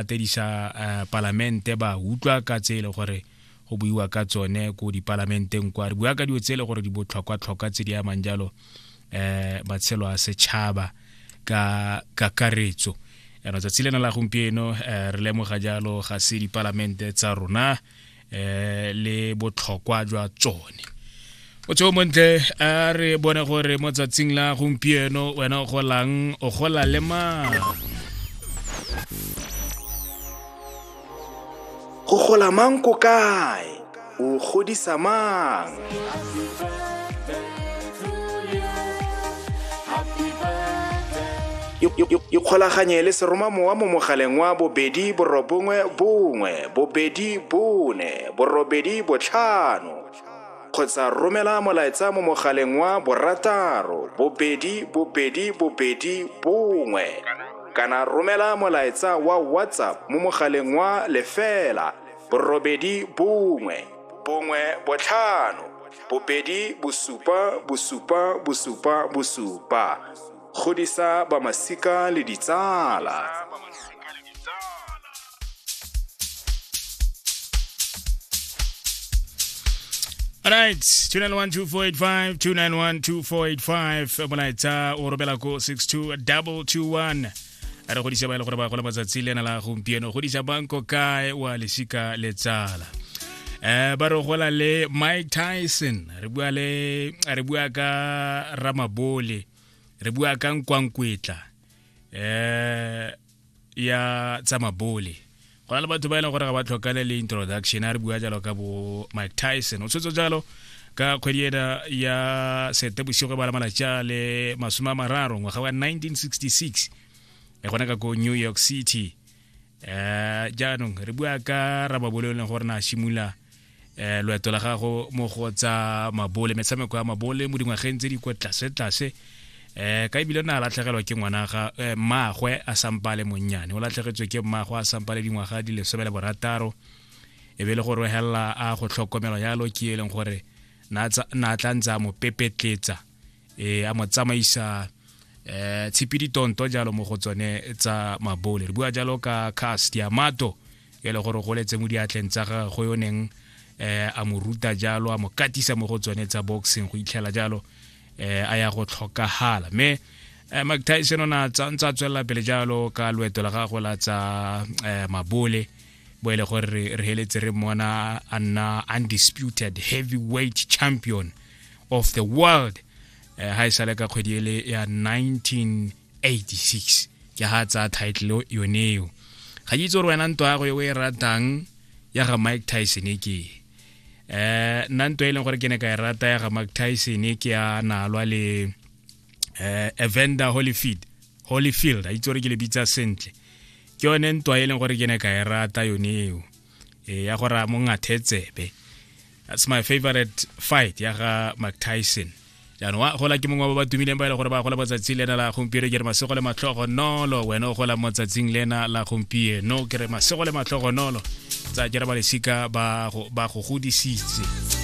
latedisa eh, palamente ba utlwa ka tse e le gore go buiwa ka tsone ko dipalamenteng kwa re bua ka dilo tse e le gore di botlhokwa-tlhokwa tse di amang jalo um matshelo a setšhaba ka kakaretso yana tsatsi lena la gompieno um re lemoga jalo ga se dipalamente tsa rona eh le botlhokwa jwa tsone o tseo montle a re bone gore mo tsatsing la gompieno wena o golang o gola le mang go gola mang ko kae o godisa mang ikgolaganye le seromamowa mo mogaleng wa bobedi borobongwe bongwe bobedi bone borobedi botlhano kgotsa romela molaetsa mo mogaleng wa borataro bobedi bobedi bobedi bongwe kana romela molaetsa wa whatsapp mo mogaleng wa lefela borobedi bongwe bongwe botlhano bobedi bosupa bosupa bosupa bosupa godisa bamasika le ditsala All right, 291-2485, 291-2485, molaetsa o robela ko 62221. a re godisa ba e le gore ba gola matsatsi le ena la gompieno godisa banko kae wa lesika le tsala um ba re gola le mike tyson re bua le re bua ka ramabole re bua ka nkwankwetla um ya tsamabole go na le batho ba e leng gore ga ba tlhokane le introduction a re bua jalo ka bo mike tyson o tshwetso jalo ka kgwedi ena ya sete bosigo ba la malatsi a le masome a mararo ngwaga wa 1966 e gona ka ko new york city um jaanong re bua ka rababoleo e leng gore na simolola eh loeto la gago mo go tsa mabole metshameko ya mabole mo dingwageng tse di kwa tlase tlase eh ka ebile na latlhegelwa ke ngwana ga eh, mmagwe a sampa le monnyane o latlhegetswe ke mmagwe a sampa le dingwaga di lesome le borataro e be le go rohelela a go tlhokomelo yalo ke e leng gore na tla ntse a mo pepetletsa eh a mo tsamaisa eh tshipidi tonto jalo mo go tsone tsa mabole re bua jalo ka cast ya mato e le gore go letse mo diatleng tsa gagwe yo neng eh a mo ruta jalo a mo katisa mo go tsone tsa boxing go itlhela jalo eh a ya go tlhokagala me eh, mike tyson o na tsa ntsa tswelela pele jalo ka loeto la gagwe la tsa eh, mabole bo e le gore re heletse re mona a nna undisputed heavyweight champion of the world eh, ha e sale ka kgwedi ele ya 1986 ke ha tsa title yoneo ga ke itse gore wena nto yago e o e ratang ya ga mike tyson e ke eh nna nto e leng gore ke ne ka e rata ya ga mike tyson e ke ya nalwa le eh evander holyfield holyfield a itse gore ke le bitsa sentle ke yone ntwa e leng gore ke ne ka e rata yone eo e ya gore a mo ngathe tsebe that's my favorite fight ya ga mike tyson jaanong wa gola ke mongwe ba ba tumileng ba e le gore ba gola matsatsi le ena la gompieno ke re masego le matlhogo nolo wena o gola mo tsatsing le ena la gompieno ke re masego le matlhogo nolo tsa ke re ba lesika ba go godisitse